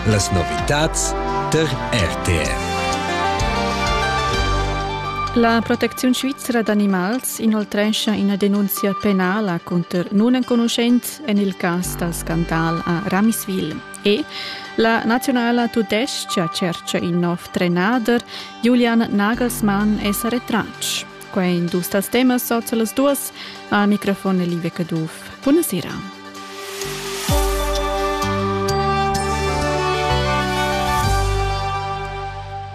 Las novitads tar RTR. La protecziun svizra d'animals inoltrescha ina denunzia penala cunter nunenconuschent en il cas dal scandal a Ramiswil. E la nazionala tudestga tschertga in nov trenader. Julian Nagelsmann è sa retratg. Quai in dus tas temas sorts las duas. A microfon è Livia Caduff. Buonasera.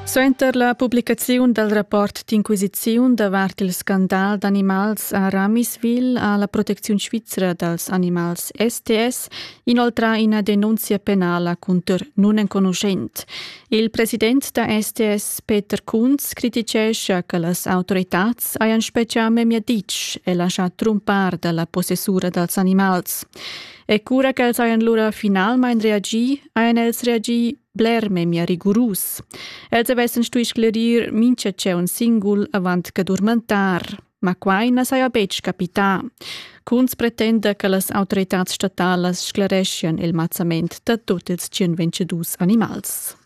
Suenter la publicaziun dal rapport d'inquisiziun davart il scandal d'animals a Ramisville ha la protecziun svizra dals animals STS inoltrà ina denunzia penala cunter nunenconuschent. Il president da STS Peter Kunz criticescha che las autoritads hajan spetgà memia ditg e laschà trumpar dalla possessura dals animals. E cura ch'els hajan lura finalmain reagì, hajan els reagì bler memia rigurus. Els avessan stuì sclerir mintga tscheu singul avant che durmentar. Ma quai na saja betg capità. Kunz pretenda che las autoritads statalas sclereschian il mazzament da tut ils 122 animals.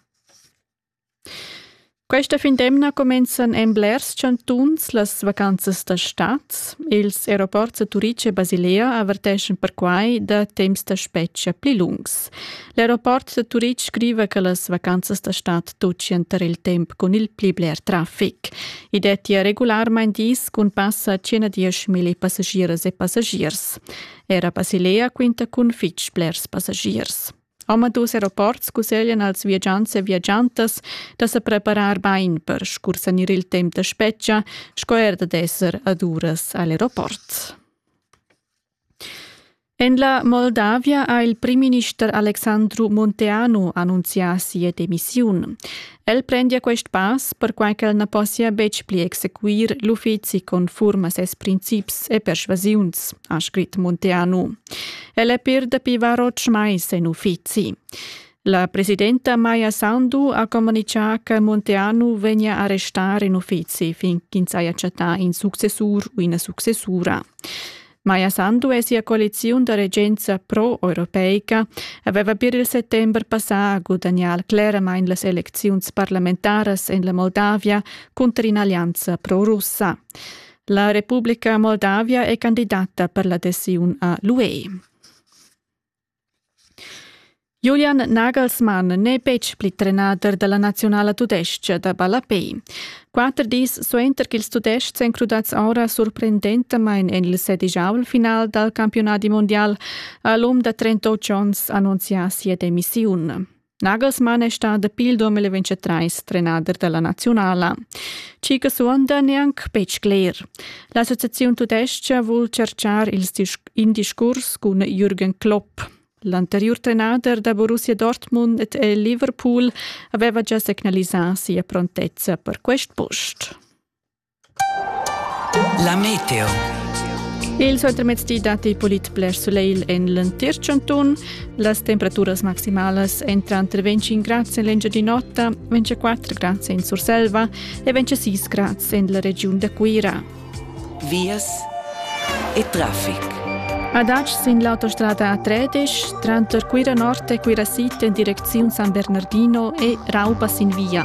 Questa fin d'emna cumenzan en blers chantuns las vacanzas da stad. Ils aeroports da Turice e Basilea averteschan perquai da temps da spetga pli lungs. L'aeroport da Turitg scriva che las vacanzas da stad tutgian tar il temp cun il pli bler traffic. I dettia regularmain dis cun passa 110.000 passagiers e passagiers. Era Basilea quinta cun fitg blers passagiers. Omadus aeroports cusseglian als viagiants e viagiantas da sa preparar bain per scursanir il temp da spetga sco er da d'esser ad uras a l'aeroport. En la Moldavia ha il primminister Alexandru Monteanu annunzià sia demissiun. El prendia quest pass perquai ch'el na possia betg pli exequir l'uffizi conform a ses princips e persvasiuns, ha scrit Monteanu. El è per dapi var otg mais en uffizi. La presidenta Maja Sandu ha communichà che Monteanu vegnia a restar in uffizi fin ch'ins haja chattà in successur u ina successura. Maja Sandu e sia coaliziun da regenza pro-europeica aveva pir il settember passà a gudagnar cleramain las elecziuns parlamentaras en la Moldavia cunter in'allianza pro-russa. La Republica Moldavia è candidata per l'adesiun a l'UE. Julian Nagelsmann n'è betg pli trenader da la naziunala tudestga da ballapei. Quatter dis suenter ch'ils Tudestgs èn crudads ora surprendentamain en il sedigiavel final dal campiunadi mundial ha l'um da 38 onns annunzià sia demissiun. Nagelsmann è stà dapi il 2023 trenader da la naziunala. Tgi che suonda neanc betg cler. L'associaziun tudestga vul cercar in discurs cun Jürgen Klopp. L'anteriur trenader da Borussia Dortmund e Liverpool aveva già signalisà sia prontezza per quest post. La meteo. Il suentermezdi datti pulit bler sulegl en l'entir chantun. Las temperaturas maximalas entran tra 25 grads en l'Engiadin'Ota, 24 grads en Surselva e 26 grads en la regiun da Cuira. Vias e traffic. Ad Acs sin l'autostrada A13, tranter Cuira Nord e Cuira Sid en direcziun San Bernardino e Rauba sin via.